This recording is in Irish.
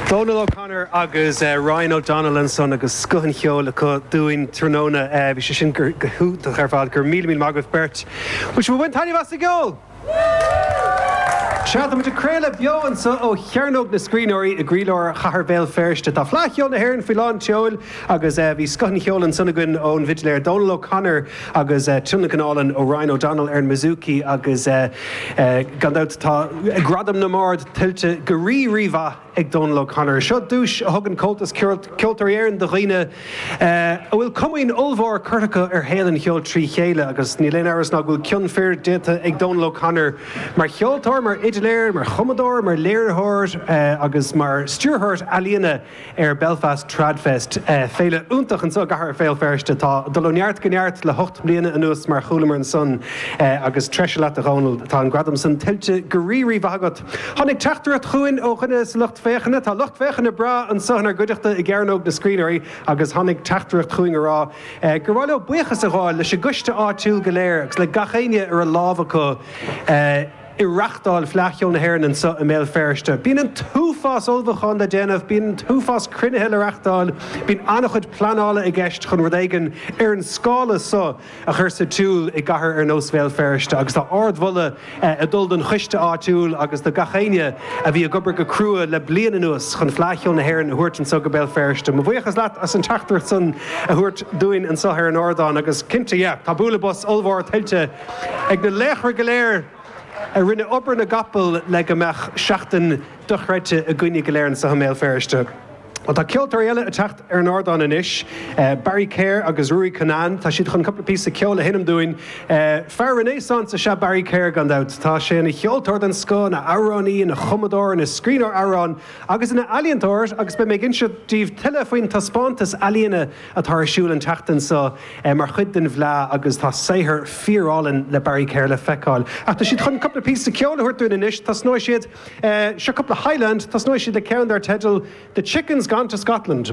Dónal O'Connor agus Ryan O'Donnell ansan agus scoth an cheoil acu dúinn tráthnóna. Bhí sé sin go hiontach ar fad. Go raibh míle míle maith agaibh beirt. Bhfuil sibh ag baint taitneamh as an gceol? Sea, tá muid ag craoladh beo anseo ó Chearnóg na Scríbhneoirí i gcroílár Chathair Bhéal Feirste. Tá Fleadh Cheoil na hÉireann faoi lán tseoil! Agus bhí scoth an cheoil ansan againn ón bhfidléir Dónal O'Connor agus tionlacan álainn ó Ryan O'Donnell ar an mbouzouki agus gan dabht tá gradam na mbard tuillte go rí rímhaith ag Dónal O'Connor. Seo duais a thugann Comhaltas Ceoltóirí Éireann do dhaoine a bhfuil comaoin ollmhór curtha acu ar shaol an cheoil trí chéile agus níl aon amhras ná go bhfuil cion fir déanta ag Dónal O'Connor mar cheoltóir, mar fhidléir, mar chumadóir, mar léiritheoir agus mar stiúrthóir ealaíona. ar Belfast Tradfest, féile iontach anseo i gcathair Bhéal Feirste. atá ag dul ó neart go neart le hocht mbliana anuas mar chualamar ansan agus treise leat a Dhónail, tá an gradam san tuillte go rí-rí-mhaith agat. Tháinig teachtaireacht chugainn ó dhuine sa lucht féachana, tá lucht féachana breá anseo inár gcuideachta i gCearnóg na Scríbhneoirí agus tháinig teachtaireacht chugainn ag rá gur mhaith leo buíochas a ghabháil leis an gcoiste áitiúil go léir agus le gach éinne a raibh lámh acu I reachtáil Fleadh Cheoil na hÉireann anseo i mBéal Feirste, bíonn an t-uafás ullmhúcháin le déanamh, bíonn an t-uafás cruinnithe le reachtáil, bíonn an-chuid pleanála i gceist chun rud éigin ar an scála so a chur sa tsiúl i gcathair ar nós Bhéal Feirste agus tá ard-mholadh ag dul don choiste áitiúil agus do gach éinne a bhí ag obair go crua le bliain anuas chun Fleadh Cheoil na hÉireann a thabhairt anseo go Béal Feirste. Mo bhuíochas leat as an teachtaireacht san a thabhairt dúinn anseo ar an ardán agus cinnte, yeah, tá bualadh bos ollmhór tuillte ag na laochra go léir a rinne obair na gcapall le go mbeadh seachtain dochreidte againne go léir anseo i mBéal Feirste. Bhuel, tá ceoltóirí eile ag teacht ar an ardán anois, Barry Kerr agus Ruairí Cunnane, tá siad chun cúpla píosa ceoil a sheinm dúinn. Fear renaissance is ea Barry Kerr, gan dabht. Tá sé ina cheoltóir den scoth, ina amhránaí, ina chumadóir, ina scríbhneoir amhrán agus ina ealaíontóir agus beidh mé ag insint daoibh tuilleadh faoin taispeántas ealaíne, atá ar siúl an tseachtain seo mar chuid den bhFleadh agus tá saothar fíorálainn le Barry Kerr le feiceáil. Ach tá siad chun cúpla píosa ceoil a thabhairt dúinn anois, tosnóidh siad, seo cúpla Highland, tosnóidh siad le ceann dar teideal 'The Chicken's Gone to Scotland'.